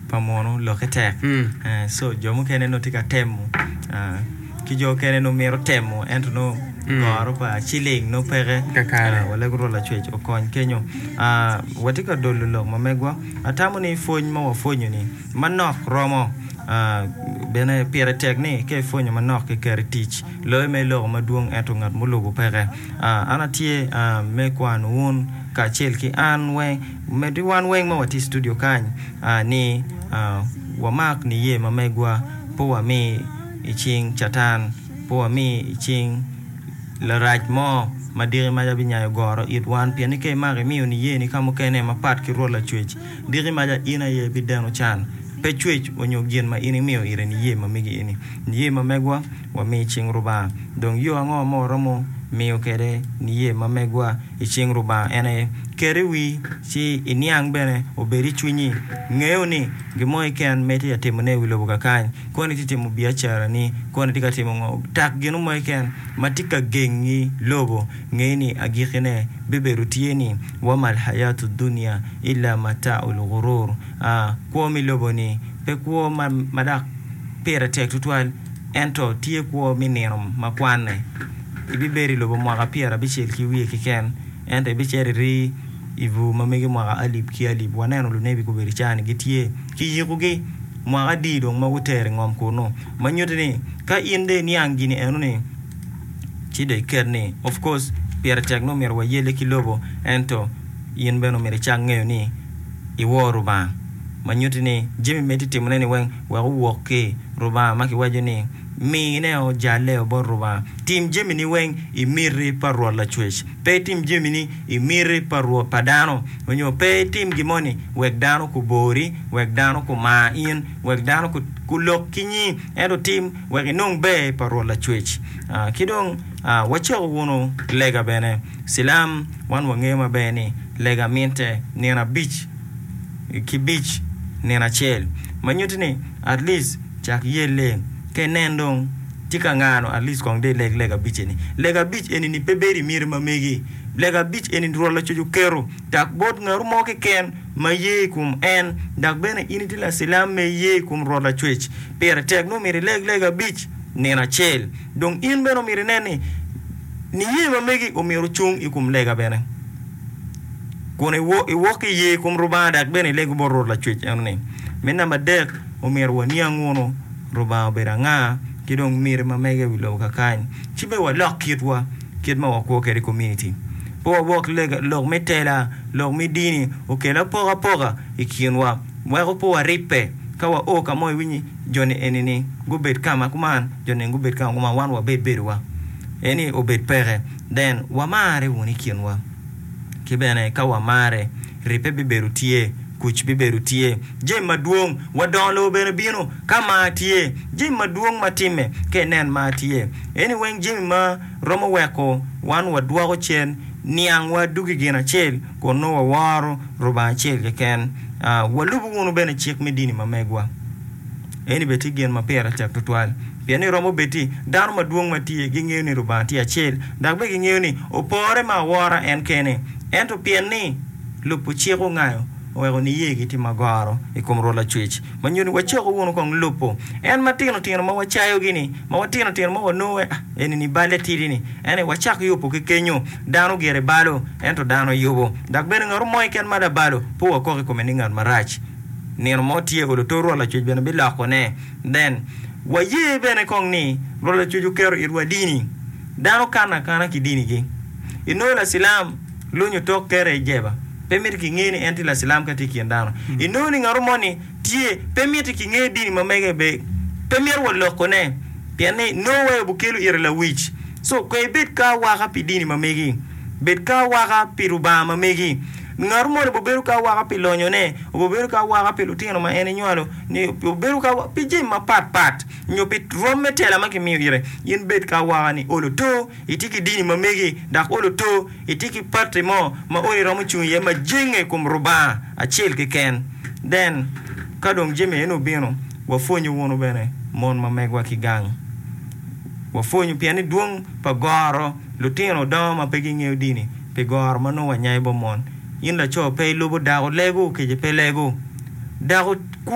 pa muno lokke tek so jo mukene nongo tye ka temo ki jo mukene nongo mito temo ento nongo goro pa ciling nongo peke wallagi orwo lacwec okony kenyo watye ka dolo lok ma megwa atamo ni pwony ma wapwonyo ni manok romo bene pire tek ni ka ipwonyo manok ki keto i tic loyo ma iloko madwong ento ngat mulubo peke an atye me kwano wun kacel ki an weng Medde wan weng ma watye i studio kany ni wamak niye ma megwa, pe wami i cing Catan, pe wami i cing Larac mo ma diki maca binyayo goro it wan, pien ni ka imako imiyo niyeni ka mukene mapat ki Rwot Lacwec, diki maca in aye bideno can, pe cwec onyo gin ma in imiyo ite niye ma megi eni. Niye ma megwa. wami cing Rubanga, dong yo ango ma waromo miyo kwede niye ma megwa i cing Rubanga? En aye, Ket i wii ci iniang bene obed i cwinyi. Ngeyo ni gin mo keken ma itye ka timone i wi lobo kakany, koni itye ka timo biacarani, koni itye ka timo ngo, tak gin mo keken ma tye ka gengi lobo, nge ni agikine bibedo tye ni, Wa mal hayatu dunya illa mataul gurur, aa, kwo me lobo-ni pe kwo ma dok pire tek tutwal. Ento tye kwo me nino ma kwanne. Ibibedo i lobo mwaka pyerabicel ki wiye keken, ento ibicito iri i bur ma mege mwaka alip ki alip. Waneno lunebi gubedo i caa-ni gitye ki yikogi mwaka adi dong ma gutero i ngom kunnu? Ma nyutti ni ka in dong iniang gin eno-ni, ci dong iket ni, Of course, pire tek nongo myero wayelle ki lobo, ento in bene myero icak ngeyo ni iwor Lubanga, ma nyutti ni jami ma itye ka timone-ni weng. wek owok ki Lubanga ma kiwaco ni, Mineo jalleo bot Lubanga. Tim jamini weng i miti pa Rwot Lacwec. Pe itim jamini i miti pa rwot pa dano, onyo pe itim gin moni wek dano kubori, wek dano kumar in, wek dano kulok ki nyingi, ento tim wek inong ber pa Rwot Lacwec. Ki dong wacako wunu lega bene. Cilam, wan wangeyo maber ni lega mitte nino abic. kibic nino acel ma nyuti ni at least cak yelle ka inen dong tye ka ngano at least kong dong ileg lega abic eni lega abic eni ni pe bedo imyeri ma megi lega abic eni Rwot Lacuc oketo dak bot ngato mo keken ma iye i kom en dak bene in itye lacilam ma iye i kom Rwot Lacwec pire tek ni omyero ileg lega abic nino acel dong in bene omyero inen ni niye ma megi omyero ocung i kom lega bene. kun iwok ki i yer kom Lubanga dok bene ilego bot Rwot Lacwec eno ni. Me namba adek, omyero waniang wunu Lubanga obedo anga ki dong miti ma mege i wi lobo kakany ci me walok kitwa, kit ma wakwo kwede komuniti. Pe wawok lega, lok me tela, lok me dini okel apokapoka i kinwa weko pe waribbe. Ka wao ka mo iwiny ni jo-ni eni-ni gubed ka ma kuman, jo-ni eni gubed ka ma kuman, wan wabed bedowa. Eni obed peke. Then, wamarre wunu i kinwa. Ki bene, ka wamarre, ribbe bibedo tye, kuc bibedo tye. Jami madwong, wadongo lobo bene bino, ka mar tye. Jami madwong ma timme, ka inen mar tye. Eni weng jami ma romo weko wan wadwoko cen niangwa dugo i gin acel, kun nongo waworo Rubanga acel keken. Walubo wunu bene cik me dini ma megwa. Eni bene tye gin ma pire tek twatwal. Pien ni romo bed ni dano madwong ma tye gingeyo ni Lubanga tye acel, dok bene gingeyo ni opore me awora en kene, ento pien ni lubo cik ongayo, oweko niyegi tye magoro i kom Rwot Lacwec, ma nyo ni wacoko wunu kong lubo en ma tino tino ma wacayogi-ni, ma wa tino tino ma wanongo eni-ni balle tidi-ni. Ento i wacak yubo ki kenyo, dano gire balo, ento dano yubo, dok bene ngatu mo keken ma labalo, pe wakok i kome ni ngat marac. Nino mo tye olo to Rwot Lacwec bene bilokone. Nen, waye bene kong ni Rwot Lacwec oketo itwa dini. Dano kanno akana ki dinigi. Inongo lacilam lonyo tok kere i jeba, pe miti kingeyo ni en tye lacilam ka tye i kin dano. Inongo ni ngato moni tye, pe miti kingeyo dini ma mege be. Pe mito walokone, pien ni nongo waye obikelo ite lawic. Co, pe ibed ka awaka pi dini ma megi. Bed ka awaka pi Lubanga ma megi. Ngat moni bibedo ki awaka pi lonyone, bibedo ki awaka pi lutino ma en enywalo, nyo bibedo ki awaka pi jami mapat pat, nyo pi rwom me tela ma kimiyo ite. In bed ki awaka ni olo to itye ki dini ma megi, dok olo to itye ki pati mo ma olo iromo cung iye ma jenge i kom Rubanga acel keken. Den, ka dong jami eni obino, wapwonyu wunu bene mon ma megwa ki gang. Wapwonyu pien ni dwong pa goro lutino dongo ma pe gingeyo dini. pi goro ma nongo wanyayo bot mon. In laco, pe ilubo dako, lego kece pe lego. Dako kwo.